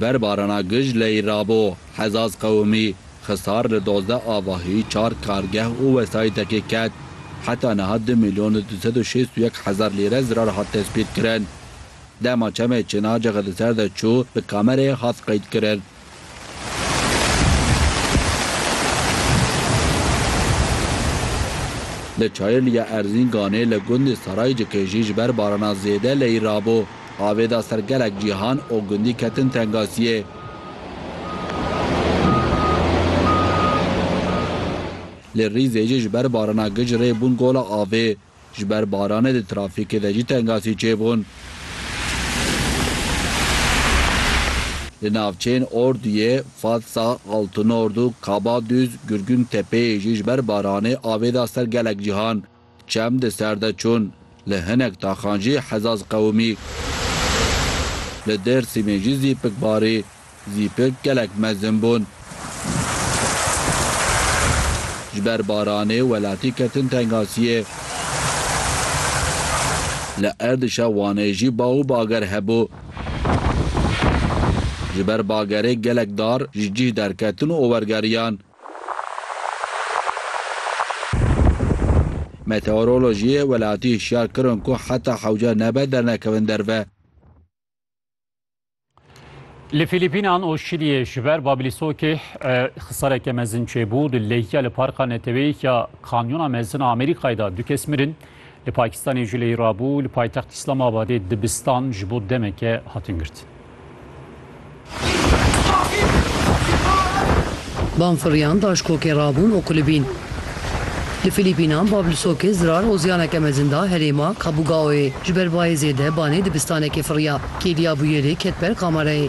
Ber barana gij leyî rabo, Hezaz Qewimî, Xisar li dozde avahî, çar kargeh û wesayîtekê ket. Heta niha du mîlyon û du sed û şêst û yek hezar lîre zirar hat tespîtkirin. Dema çemê Çinacixê li ser de çû, bi kamereyê hat qeydkirin. Li Çayirliya Erzînganê li gundê Saraycikê jî ji ber barana zêde leyî rabo. Avê da ser gelek cîhan û gundî ketin tengasiyê. Li Rîzê jî ji ber barana gij rê bûn gola avê. Ji ber baranê di trafîkê de jî tengasî çêbûn. Li navçeyên Orduyê, Fatsa, Altunordu, Kabaduz, Gurgûntepeyê jî ji ber baranê avê da ser gelek cîhan. Çem di ser de çûn. Li hinek taxan jî hezaz qewimî. Li Dêrsîmê jî zîpik barî. Zîpik gelek mezin bûn. Ji ber baranê welatî ketin tengasiyê. Li erdişa Wanê jî baw û bager hebû. Ji ber bagerê gelek dar ji cih derketin û ower geriyan. Meteorolojiyê welatî hişyar kirin ku heta hewce nebe dernekevin derve. Li Fîlîpînan û Şîliyê ji ber babîlîsokê xisareke mezin çêbû, di lehîya li parka neteweyî ya Kanyona Mezin a Amerîkayê de du kes mirin, Li Pakistanê Juleyê rabû li paytext Îslamabadê dibistan ji bo demeke hatin girtin. Banfirriyan daşkokê rabûn û kulibîn. Li Fîlîpînan bav li sokê zirar ozyaneke mezin da herêma Kabugaoyê. Ji ber bayê zêde banê dibistanekê firriya. Kêliya bûyerê ket ber kamerayê.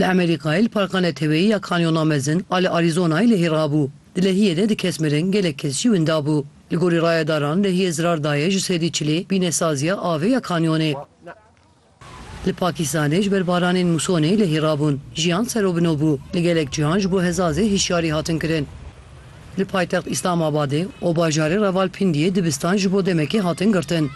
Li Amerîkayê li parka neteweyî ya Kanyona Mezin a li Arîzonayê lehî rabû. Di lehiyê de du kes mirin gelek kes jî winda bû. Li gorî rayedaran lehiyê zirar daye ji sedî çilê bînesaziya avê ya kanyonê. Li Pakîstanê ji ber baranên musonê lehî rabûn. Jiyan serobino bû. Li gelek cihan ji bo hezazê hişyarî hatin kirin. Li paytext Îslamabadê û bajarê Ravalpindiyê dibistan ji bo demekê hatin girtin.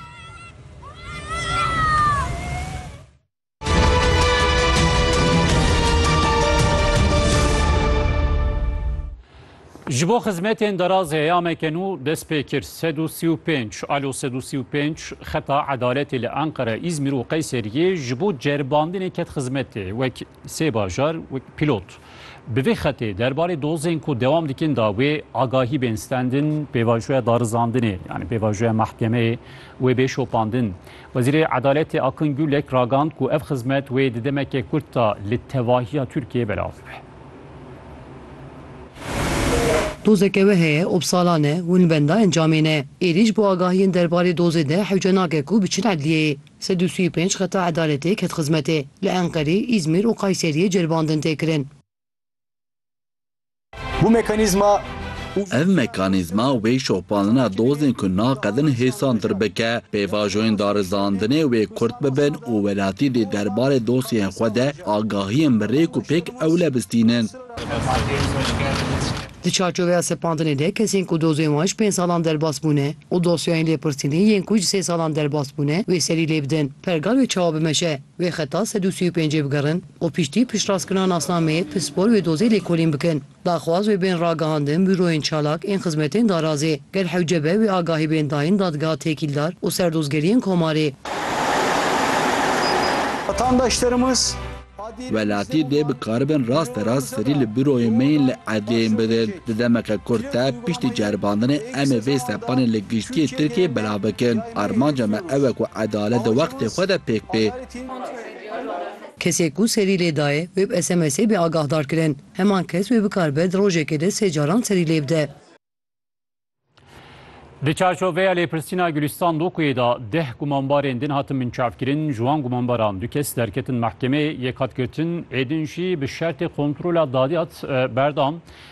Ji bo xizmetên deraz heyameke nû dest pê kir. Sed û sî û pênc alo sed û sî û pênc xeta edaletê li Enqere, Îzmîr û Qeysêriyê ji bo ceribandinê ket xizmetê wek sê bajar wek pîlot. Bi vê xetê derbarê dozên ku dewam dikin da wê agahî bên stendin pêvajoya darizandinê yanî pêvajoya mehkemeyê wê bê şopandin. Wezîrê Edaletê Akın Gürlek ragand ku ev xizmet wê di demeke kurt de li tevahiya Tirkiyeyê belav bibe. Dozeke we heye ob salan e hûn li benda encamê ne. Êrîş bo agahiyên derbarê dozê de hewce nake ku biçin edliyeyê. Sed û sî û pênc xeta edaletê ket xizmetê. Li Enqerê, Îzmir û Qayseriyê ceribandin tê kirin. Bu mekanîzma Ev mekanîzma wê şopandina dozên ku naqedin hêsantir bike. Pêvajoyên darizandinê wê kurt bibin û welatî dê derbarê dosyeyên xwe de agahiyên bi rêk û pêk ewle bistînin. Di çarçoveya sepandinê de kesên ku dozên wan ji pênc salan derbas bûne û dosyayên lêpirsînê yên ku ji sê salan derbas bûne wê serî lê bidin. Pergal wê çawa bimeşe? Wê xeta sed û sî û pêncê bigerin. û piştî piştrastkirina nasnameyê pispor wê dozê lêkolîn bikin. Daxwaz wê bên ragihandin Bûroyên Çalak ên Xizmetên Darazê. Gel hewce be wê agahî bên dayîn Dadgeha Têkîldar û Serdozgeriyên Komarê. Welatî dê bikaribin rasterast serî li bûroyên me yên li erdhêyên bidin. Di demeke kurt de piştî ceribandinê em ê vê sepanê li giştîyê Tirkiyeyê belav bikin. Armanca me ew e ku edalet di wextê xwe de pêk bê. Kesê ku serî lê dayê, wê bi SMSê bê agahdar kirin. Heman kes wê bikaribe di rojekê de sê caran serî lê bide. Di çarçoveya lêpirsîna Gulîstan Dokuyê de deh gumanbarên din hatin binçavkirin, ji wan gumanbaran du kes derketin mehkemeyê, yek hat girtin, êdin jî bi şertê kontrola dadiyat berdan.